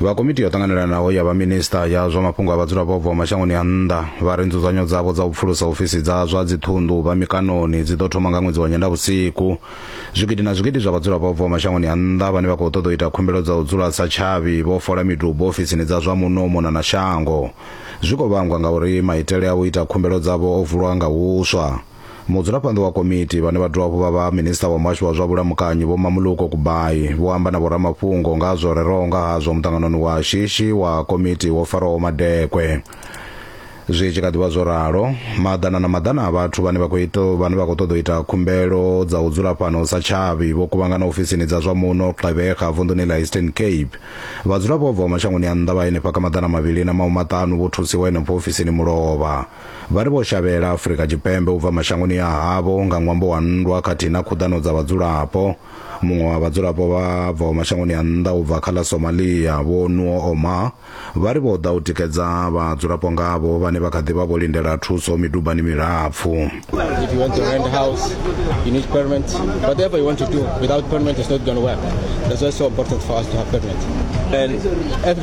vha komiti yo ṱanganelanaho ya vhaminista ya zwa mafhungo a vhadzulapo bvaho mashangoni a nnḓa vha ri nzudzanyo dzavho dza u pfulusa ofisi dza zwa dziṱhunḓu vha mikanoni dzi ḓo thoma nga ṅwedzi wa nyendavhusiku zwigidi na zwigidi zwa vhadzulapo bvaho mashangoni a nnḓa vhane vha khou ṱoḓa u ita khumbelo dza u dzula sa tshavhi vho fola midubo ofisini dza zwa muno mona na shango zwi khou vhangwa ngauri maitele a u ita khumbelo dzavho o vulwa nga huswa Mudzulaphanḓa wa komiti vhane vha dovha hafhu vha vha minisiṱa wa muhasho wa zwa vhulamukanyi Vho Mamuluko Kubayi vho amba na vhoramafhungo nga ha zwo reraho nga hazwo muṱanganoni wa shishi wa komiti wo faraho Madekwe. Zwi tshi kha ḓivha zwo ralo, maḓana na maḓana a vhathu vhane vha khou ita vhane vha khou ṱoḓa u ita khumbelo dza u dzula fhano sa tshavhi vho kuvhangana ofisini dza zwa muno Gqeberha vunḓuni ḽa Eastern Cape. Vhadzulapo vha bvaho mashangoni a nnḓa vha henefha kha maḓana mavhili na mahumaṱanu vho thusiwa henefho ofisini mulovha. Vha ri vho shavhela Afrika Tshipembe u bva mashangoni a havho nga ṅwambo wa nndwa khathihi na khuḓano dza vhadzulapo. Muṅwe wa vhadzulapo vha bvaho mashangoni a nnḓa u bva kha ḽa Somalia, Vho Nuo Omar, vha ri vho ḓa u tikedza vhadzulapo ngavho vhane vha kha ḓi vha vho lindela thuso midubani milapfu. If you want to rent house, you need permit. Whatever you want to do without permit is not going to work. That's why it's so important for us to have permit. And every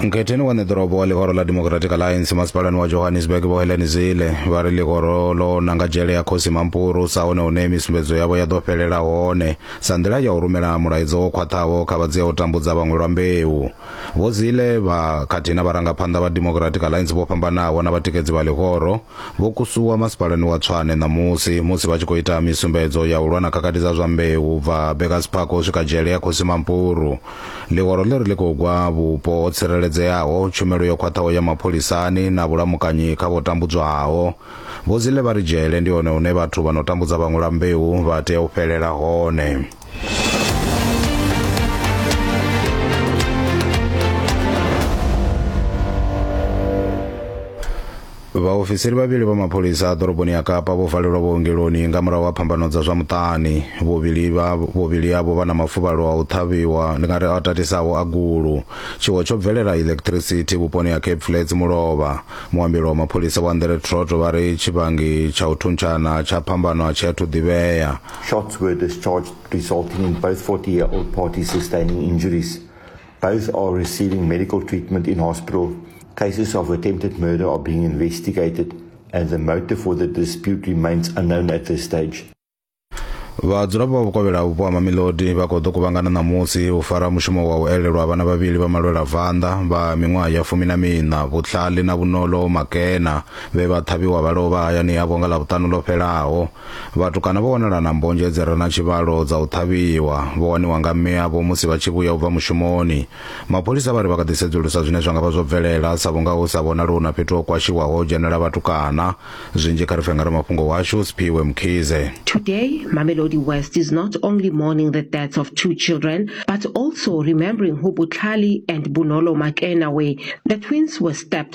Nkhetheni wa neḓorobo wa ḽihoro ḽa Democratic Alliance masipalani wa Johannesburg vho Helen Zille vha ri ḽihoro ḽo nanga dzhele ya khosi Mampuru sa hone hune misumbedzo yavho ya ḓo fhelela hone sa nḓila ya u rumela mulaedza wo khwaṱhaho kha vhadzia u tambudza vhaṅwe lwa mbeu. Vho Zille vha khathihi na vharangaphanḓa vha Democratic Alliance vho fhambanaho na vhatikedzi vha ḽihoro vho kusuwa masipalani wa Tshwane ṋamusi musi vha tshi khou ita misumbedzo ya u lwa na khakhathi dza zwa mbeu u bva Burgers Park u swika dzhele ya khosi Mampuru. Ḽihoro ḽi ri ḽi khou gwa vhupo ho tsireledzeaho, tshumelo yo khwaṱhaho ya mapholisani na vhulamukanyi kha vho tambudzwaho. Vho Zille vha ri dzhele ndi hone hune vhathu vha no tambudza vhaṅwe lwa mbeu vha tea u fhelela hone. vhaofisiri vhavhili vha mapholisa a ḓoroboni ya kapa vho valelwa vhuongeloni nga murahu ha phambano dza zwa muṱani vhuvhili vha vhuvhili avho vha na mafuvhalo a u ṱhavhiwa ndi nga ri a tatisaho a gulu tshiwo tsho bvelela electricity vhuponi ha cape flats mulovha muambelo wa mapholisa wa ndere troto vha ri tshivhangi tsha u thuntshana tsha phambano a tshi athu ḓivhea shots were discharged resulting in both 40 year old parties sustaining injuries Both are receiving medical treatment in hospital. Cases of attempted murder are being investigated and the motive for the dispute remains unknown at this stage. vhadzulapo vha vhukovhela vhupo ha mamilodi vha khou ḓo kuvhangana ṋamusi u fara mushumo wa u elelwa vhana vhavhili vha malwela vanḓa vha miṅwaha ya fumi na miṋa vhutlhali na vhunolo makena vhe vha ṱhavhiwa vha lovha hayani yavho nga ḽavhuṱanu ḽo fhelaho Vhatukana vho wanala na mbonzhe dzi re na tshivhalo dza u ṱhavhiwa, vho waniwa nga mme avho musi vha tshi vhuya u bva mushumoni. Mapholisa vha ri vha kha ḓi sedzulusa zwine zwa nga vha zwo bvelela sa vhunga hu sa vhonali hu na fhethu ho kwashiwaho ho dzhenela vhatukana. Zwinzhi kha ri pfe nga ramafhungo washu Sphiwe Mkhize. Today, Mamelodi West is not only mourning the deaths of two children, but also remembering who Butlhali and Bunolo Makena were. The twins were stabbed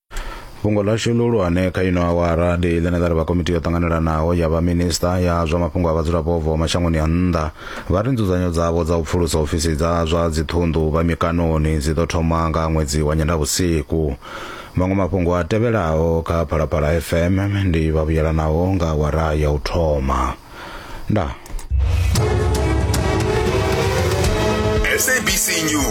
fhungo ḽashu ḽihulwane kha ino awara ndi ḽine ḽa ri vha komiti yo ṱanganelanaho ya vhaminista ya zwa mafhungo a vhadzulapo bvaho mashangoni a nnḓa vha ri nzudzanyo dzavho dza u pfulusa ofisi dza zwa dziṱhunḓu vha mikanoni dzi ḓo thoma nga ṅwedzi wa nyendavhusiku maṅwe mafhungo a tevhelaho kha phalaphala fm ndi vhavhuyelanaho nga awara ya u thoma nda sabc news